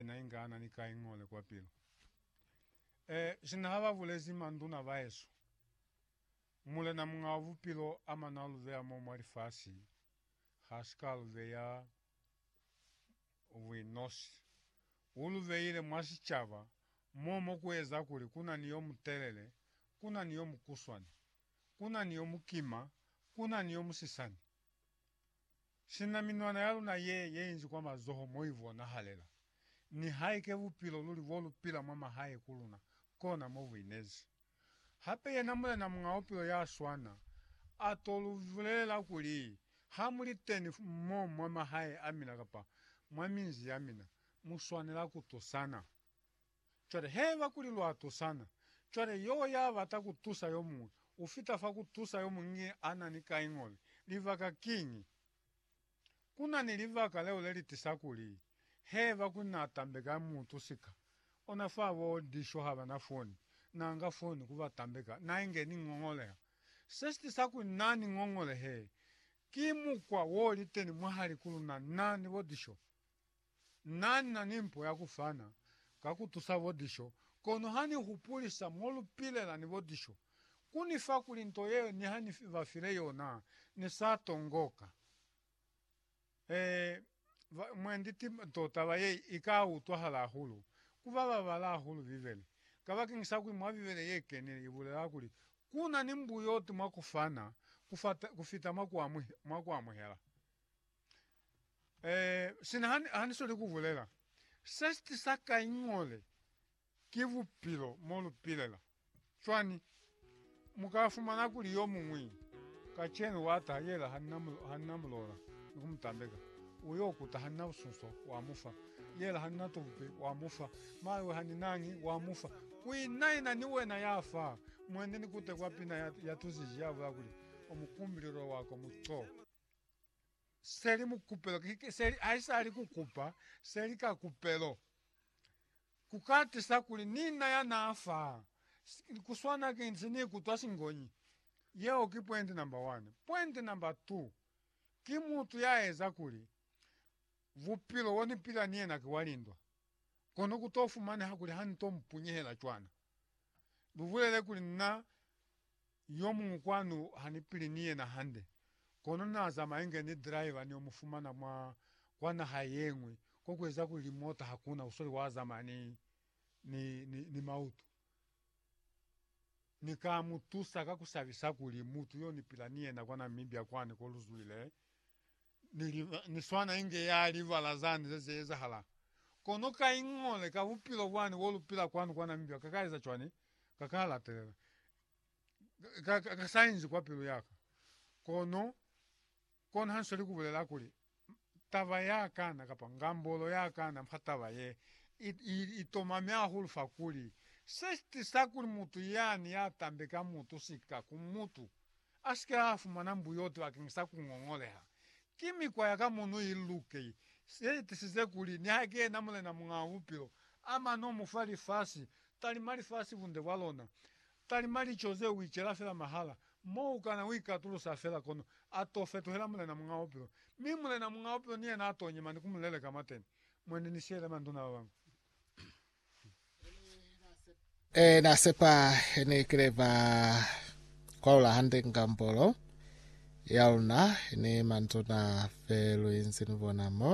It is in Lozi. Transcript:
Yena inga ana ni kaingole kwa pilu. E, sina haba bulezi manduna baesu, Mulena Muñ'a wa Bupilo a mana lu beya mo mwa lifasi, ha si ka lu beya buinosi. U lu beile mwa sicaba, mo mo ku eza kuli ku na ni yo mutelele, ku na ni yo mukuswani, ku na ni yo mukima, ku na ni yo musisani. Sina minwana ya luna ye ye inzi kwa mazoho mo i bonahalela, nihaike bupilo luli bo lu pila mwa mahae ku luna, kona mo bu inezi. Hape yena Mulena Muñ'a Bupilo ya swana a to lu bulelela kuli, Ha mu li teni mo mwa mahae a mina kapa mwa minzi ya mina, mu swanela ku tusana. Cwale haiba kuli lwa tusana, cwale yo ya bata ku tusa yo muñwi, u fita fa ku tusa yo muñwi a na ni kaingobe. Libaka kiñi? Ku na ni libaka leo le li tisa kuli, haiba kuli na tambeka mutu sika, ona fa bo Disho ha ba na foni, na nga foni ku ba tambeka, na inge ni ngongoleha. Se si tisa kuli na ni ngongolehe, ki mukwa wo liteni mwahali ku luna, na ni bo Disho. Na ni na ni mpo ya ku fana ka ku tusa bo diso, kono ha ni hupulisa mo lu pilela ni bo diso, ku ni fa kuli nto yeo niha ni ba file yona ni sa tongoka. Ee, ba, mwendi ti nto taba ye i ka utwahala hahulu ku ba ba bala hahulu Bibele, kabakeñisa kuli mwa Bibele ye kenile i bulela kuli ku na ni mbuyoti mwa ku fana ku fita mwa ku amuhela. Eh, sina ha ni- ha ni soli ku bulela, se si tisa ka iñole ki bupilo mo lu pilela. Cwani, mu ka fumana kuli yo muñwi kacenu wa taha yela ha ni na mu- ha ni na mulola ni ku mu tambeka, u yo kuta ha ni na busunso, wa mu fa, yela ha ni na tubupi, wa mu fa, mawe ha ni nañi, wa mu fa. Ku ina-ina ni wena ya fa, mwene ni kute kwa pina ya, ya tuziji, ya bula kuli, Omukumbililwe wako mu co. seli mukupelo seli aisali kukupa seli ka kupelo. Kukatisa kuli ni na yana fa kuswana ki nsi ni kutwa singonyi. Yeo ki pwendi namba wani. Pwendi namba tu, ki mutu ya eza kuli bupilo bo ni pila ni yena ki wa lindwa, kono ku to fumaneha kuli ha ni to mupunyehela cwana. Lubulele kuli, Na yomuñwi kwanu hanipili ni yena hande, kono naazama inge ni driver niyo mufumana mwa kwa naha yeñwi, ko kueza kuli limota hakuna usole waazamaya ni, ni, ni, ni mautu. Ni ka mutusa ka kusabisa kuli mutu yo nipila ni yena kwa Namibia kwani ko luzwile, Ni swana inge ya libala zani ze ze ezahala. Kono ka iñole ka bupilo bwani bo lu pila kwanu kwa Namibia ka ka eza cwani? Ka ka latelela. Ka, ka, ka sa inzi kwa pilu yaka. Kono, kono ha nsweli ku bulela kuli, taba ya kana, kapa ngambolo ya kana fa taba ye, i, i, i tomami hahulu fa kuli, se si tisa kuli mutu yani ya tambe ka mutu sika ku mutu, A si ke a fumana mbuyoti bakeng sa ku ngongoleha. Ki mikwa ya ka mono i luke i, ye itisize kuli niha ki yena Mulena Muñaa Bupilo, a mane o mu fa lifasi, talima lifasi bunde bwa lona, talima lico ze u icela fela mahala, mo u kana u ikatulusa fela, kono a to fetuhela Mulena Muñaa Bupilo. Mi Mulena Muñaa Bupilo ni yena a to nyema ni ku mu leleka mwateni. Mwene ni siyele manduna ba bañwi. E na sepa ne kile ba kwalula hande ngambolo ya luna ne manzona fe luinzi ni bona mo.